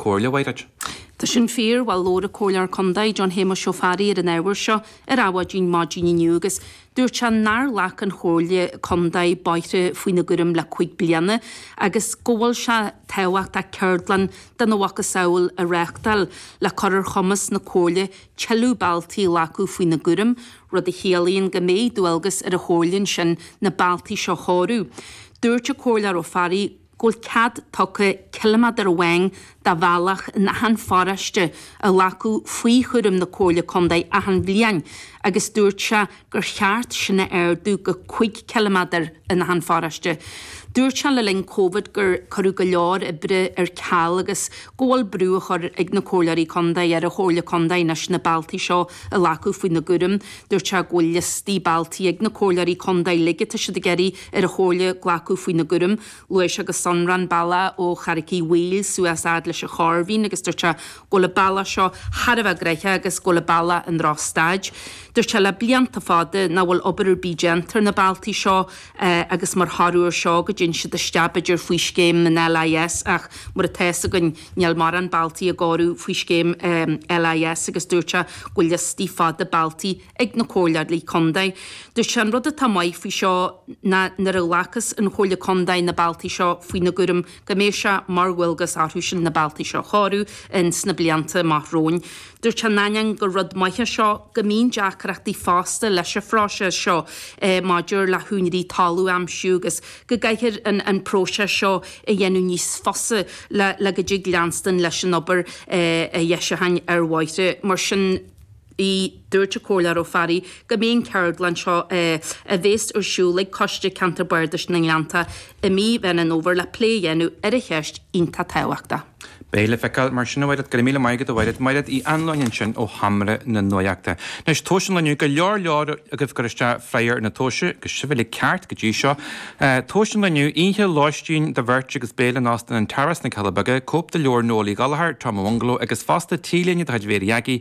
Comhairle Mhaighréid. Tá sin fíor, bhuel, labhair an Comhairleoir Contae, John Shéamuis Ó Fearraigh ar an ábhar seo ar Adhmhaidin maidin inniu agus dúirt sé nár ghlac an Chomhairle Contae bóithre faoina gcúram le cúig bliana agus go bhfuil sé tábhachtach ceardlann dena mhacasamhail a reáchtáil le cur ar chumas na Comhairle tuilleadh bealtaí a ghlacadh faoina gcúram, rud a chiallaíonn go mbeidh dualgas ar an Chomhairle ansin na bealtaí seo a chóiriú. Dúirt an Comhairleoir Ó Fearraigh. go bhfuil cead tugtha ciliméadar amháin de bhealach in achan pharóiste a ghlacadh faoi chúram na Comhairle Contae achan bhliain agus dúirt sé gur cheart sin a ardú go cúig ciliméadar in achan pharóiste. Dúirt sé le linn Covid gur cuireadh go leor oibre ar ceal agus go bhfuil brú á chur ag na Comhairleoirí Contae ar an Chomhairle Contae anois na bealtaí seo a ghlacadh faoina gcúram. Dúirt sé go bhfuil liostaí bealtaí ag na Comhairleoirí Contae uilig atá siad ag iarraidh ar an Chomhairle glacadh faoina gcúram, luaigh sé go sonrach an bealach ó Charraic Uí Bhaoill suas fhad leis an Chorrmhín agus dúirt sé go bhfuil an bealach seo thar a bheith gnoitheach agus go bhfuil an bealach i ndrochstaid. Dúirt sé le blianta fada nach bhfuil obair ar bith déanta ar na bealtaí seo agus mar thoradh ar seo go dtéann siad isteach b'fhéidir faoi scéim an LIS ach mar atá fhios againn níl mórán bealtaí á gcóiriú faoi scéim LIS agus dúirt sé go bhfuil liostaí fada bealtaí ag na Comhairleoirí Contae. Dúirt sé, An rud atá maith faoi seo ná nuair a ghlacas an Chomhairle Contae na bealtaí seo faoina gcúram go mbeidh sé mar dhualgas orthu sin na bealtaí seo a chóiriú in sna blianta amach romhainn. Dúirt sé, in ainneoin gur rud maith é seo, go mbíonn deacrachtaí fosta leis an phróiseas seo maidir le húinéirí talún a aimsiú agus go gcaithfear an próiseas seo a dhéanamh níos fusa le go dtig leanstan leis an obair dheisiúcháin ar bhóithre. Mar sin. ii, Dúirt an Comhairleoir Ó Fearraigh go mbeidh an cheardlann seo a bhéas ar siúl ag Coiste Ceantair Bardais na nGleannta i mí Mheán Fhómhair le plé a dhéanamh ar an cheist iontach tábhachtach. Beidh le feiceáil mar sin a Mhairéad, go raibh míle maith agat a Mhairéad, Mairéad Uí Annluain ansin ó Sheomra na Nuaíochta. Anois tomhais an lae inniu, go leor leor agaibh ag cur isteach freagar na tomhaise agus sibh uilig ceart go dtí seo. Tomhais an lae inniu, oíche lóistín do bheirt agus béile in Óstán an Tara sna Cealla Beaga, cóip de leabhar Noel Uí Ghallchóir, Tom Ó Mhunghaile agus fosta T-léine de chuid Mhary Aggie,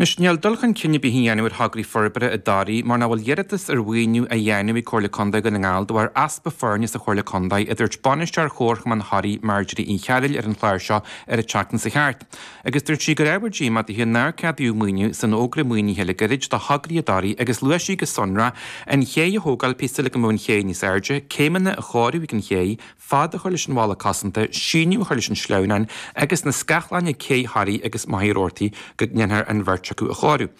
Anois, níl dul chun cinn ar bith á dhéanamh ar thograí forbartha i dToraigh mar nach bhfuil iarratas ar mhaoiniú á dhéanamh ag Comhairle Contae Dhún na nGall de bharr easpa foirne sa Chomhairle Contae, a dúirt bainisteoir Chomharchumann Thoraí, Marjorie Uí Chearbhaill ar an chlár seo ar an tseachtain seo chuaigh thart agus dúirt sí gur ábhar díomá di nár ceadaíodh maoiniú san fhógra maoinithe le gairid do thograí i dToraigh agus luaigh sí go sonrach an chéidh a thógáil, píosa le go mbeadh an chéidh níos airde, céimeanna a chóiriú ag an chéidh, fad a chur leis an bhalla cosanta, síneadh a chur leis an sleamhnán agus na scáthláin ag cé Thoraí agus Machaire Rabhartaigh go ndéanfar an bheirt acu a chóiriú.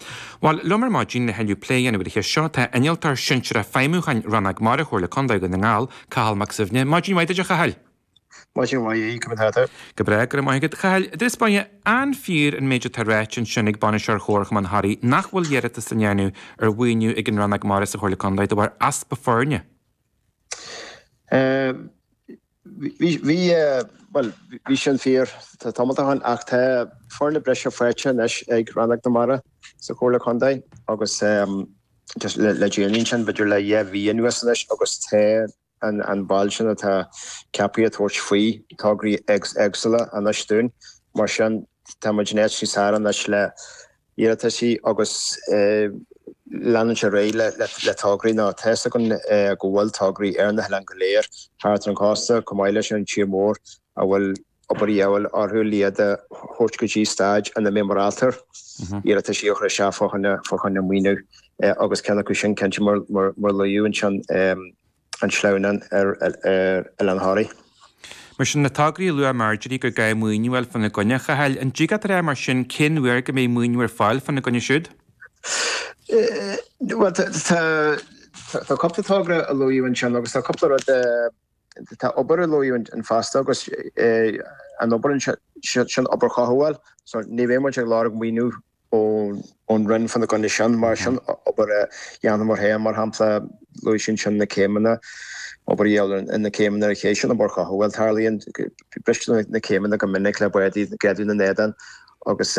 Bhuel liom ar maidin lena thuilleadh plé a dhéanamh ar an cheist seo, tá innealtóir sinsearach feidhmiúcháin Rannóg Mara Chomhairle Contae Dhún na nGall, Cathal Mac Suibhne. Maidin mhaith duit a Chathail! Maidin mhaith a Aodh, cad é mar atá tú? Go breá, go raibh maith agat. A Chathail, ar dtús báire, an fíor an méid atá ráite ansin ag bainisteoir Chomharchumann Thoraí nach bhfuil iarratais á ndéanamh ar mhaoiniú ag an Rannóg Mara sa Chomhairle Contae de bharr easpa foirne. Bhí, bhí, bhuel, bhí sin fíor, tá tamall ó shin, ach tá foirne breise faighte anois ag Rannóg na Mara sa Chomhairle Contae agus just le, le déanaí ansin, b'fhéidir le dhá mhí anuas anois agus tá an, an ball sin atá ceaptha ag tabhairt faoi tograí éagsúla anois dúinn. Mar sin, tá muid in áit níos fearr anois le, iarrataisí agus leanúint ar aghaidh le tograí ná tá a fhios againn go bhfuil tograí ar na hoileáin go léir thart ar an gcósta chomh maith leis an tír mór a bhfuil obair de dhíobháil orthu le iad a thabhairt go dtí staid ina mbeidh muid ábalta iarrataisí a chur isteach fá choinne maoiniú agus ceann acu sin cinnte mar a luaíodh ansin an sleamhnán ar Oileán Thoraí. Mar sin, na tograí a luaigh Marjorie gur gá maoiniú a fháil fána gcoinne, a Chathail, an dtig leat a rá, mar sin, cén uair go mbeidh maoiniú ar fáil fána gcoinne siúd? Bhuel, tá cúpla togra a luaíodh ansin agus tá cúpla rud a, tá obair a luaíodh ansin fosta agus an obair ansin, sin obair chothabháil so ní bheidh muid ag lorg maoiniú ón Roinn fána gcoinne sin, mar sin, obair a dhéanfaidh muid féin, mar shampla, luaigh sí ansin na céimeanna, obair a dhéanamh ar na céimeanna ar an chéidh sin, obair chothabháil, tarlaíonn, bristear na céimeanna go minic le báid ag greadadh ina n-éadan agus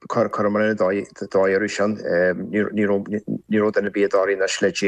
cuireann muidne dóigh orthu sin, ní raibh duine ar bith i dToraigh anois le déa.